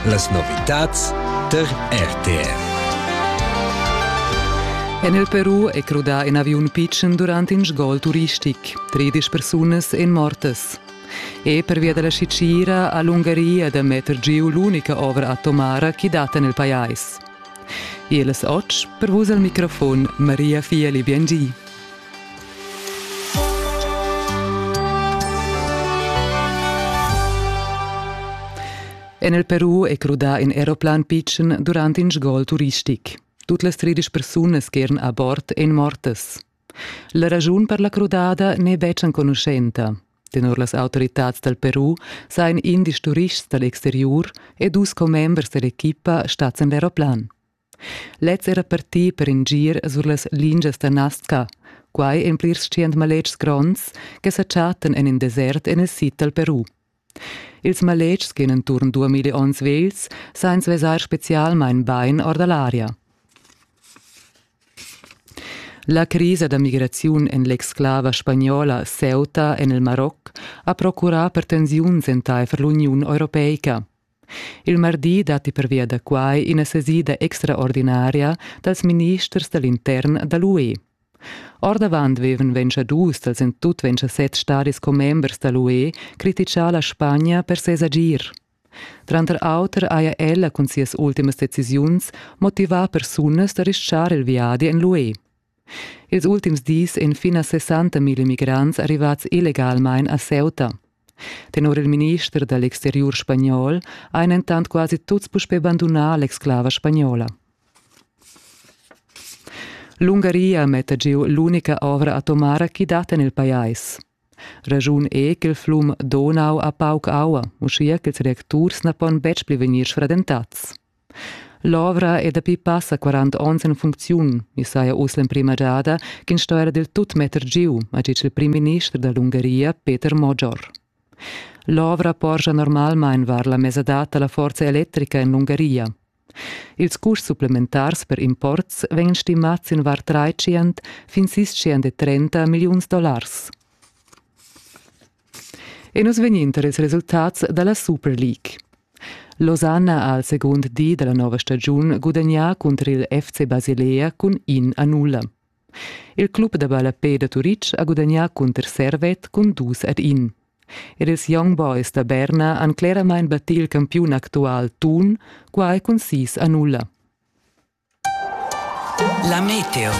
Las novitads tar RTR. En il Peru è crudà in aviun pitschen durant in sgol turistic. Tredisch persunas èn mortas. E pervia da la Sicira ha l'Ungaria da metter giu l'unica ovra atomara che dat en il pajais. Ils otg per vus al microfon Maria Fieli Biangi. En il Peru è crudà in aeroplan pitschen durant in sgol turistic. Tut las tredisch persunas che eran a bord èn mortas. La raschun per la crudada n'è betg enconuschenta. Tenor las autoritads dal Peru sajan indisch turists dal exteriur e dus commembers dall'equipa stads en l'aeroplan. Lez era partì per in gir sur las lingias da Nasca, quai en plirs tschient maletgs gronds che sa chattan en in desert en il sid dal Peru. Ils maletgs che en enturn duamilli onns vegls san vesair spezialmain bain or da l'aria. La crisa da migraziun en l'exclava spagnola Ceuta en il Maroc ha procurà per tensiuns entaifer l'Uniun europeica. Il mardi datti pervia da quai ina sesida extraordinaria dals ministers da l'intern da l'UE. Ordavant vevan ventscha dus dals en tut ventscha set stadis commembers da l'UE criticà la Spagna per ses agir. Tranter auter haja ella cun sias ultimas decisiuns motivà persunas da rischar il viadi en l'UE. Ils ultims dis ein finas 60.000 migrants arrivats illegalmein a Ceuta. Tenor il minister dall exteriur spagnol ein entant quasi tuts puspei bandunà l'exclava spagnola. L'Ungaria metta giu l'unica ovra atomara chi dat en il pajais. Raschun è ch'il flum Donau ha pauc aua, uschia ch'ils reacturs na pon betg pli vegnir sfradentads. L'ovra è dapi passa 40 onns en funcziun. I saja uss l'emprima giada ch'ins sto era dil tut metter giu, ha ditg il primminister da l'Ungaria Peter Moggior. L'ovra porscha normalmain var la mesadad da la forza electrica en l'Ungaria. Ils custs supplementars per imports vegnan stimads in var tratschient fin sis tschient e trenta milliuns dollars. E nus vegninter ils resultats dalla Super League. Losanna ha al secund di dalla nova stagiun gudagnà cunter il FC Basilea cun in a nulla. Il club da ballapè da Turitg ha gudagnà cunter Servet cun dus ad in. Ed ils Young Boys da Berna han cleramain battì il campiun actual Thun, quai cun sis a nulla. La meteo.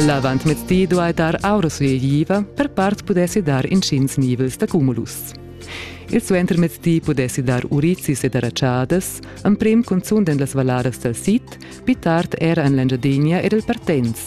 L'avantmettì duai dar aura sueigliva, per part pudessi dar inschins nivels da cumulus. Il suentermezdi pudessi dar urizis ed aratschadas, emprim cunzunt en las valladas dal sid, pli tard era en l'Engiadinea ed il Partenz.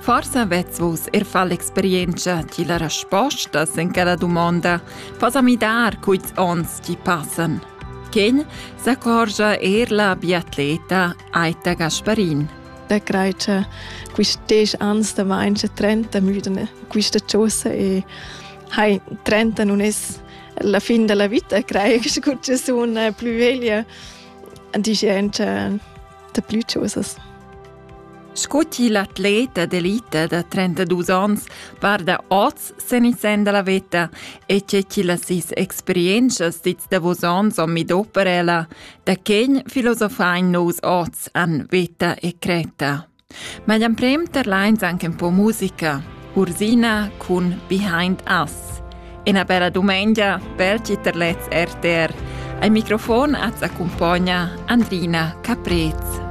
Forsa vez vus er far l'experienza di la resposta sin quella domanda. Fas a midar quits ons ti passan. Ken s'accorgia er la biatleta Aita Gasparin. Da creita quist desch ans da main 30 müdene quista chosa e hai 30 non es la fin della vita crei che gut sun plü veglia dice anche da plü chosas Sco til atlet d'elita da 32 onns varda oz sen il sen dalla veta e tge til las sis experientschas dits davos onns o midopper ella, da quegn filosofain nous oz an veta e creta. Ma l'emprem terlains anche un po musica, Ursina cun Behind Us. Ena bella dumengia per ti terlets RTR. Ai microfon az accompagna Andrina Caprez.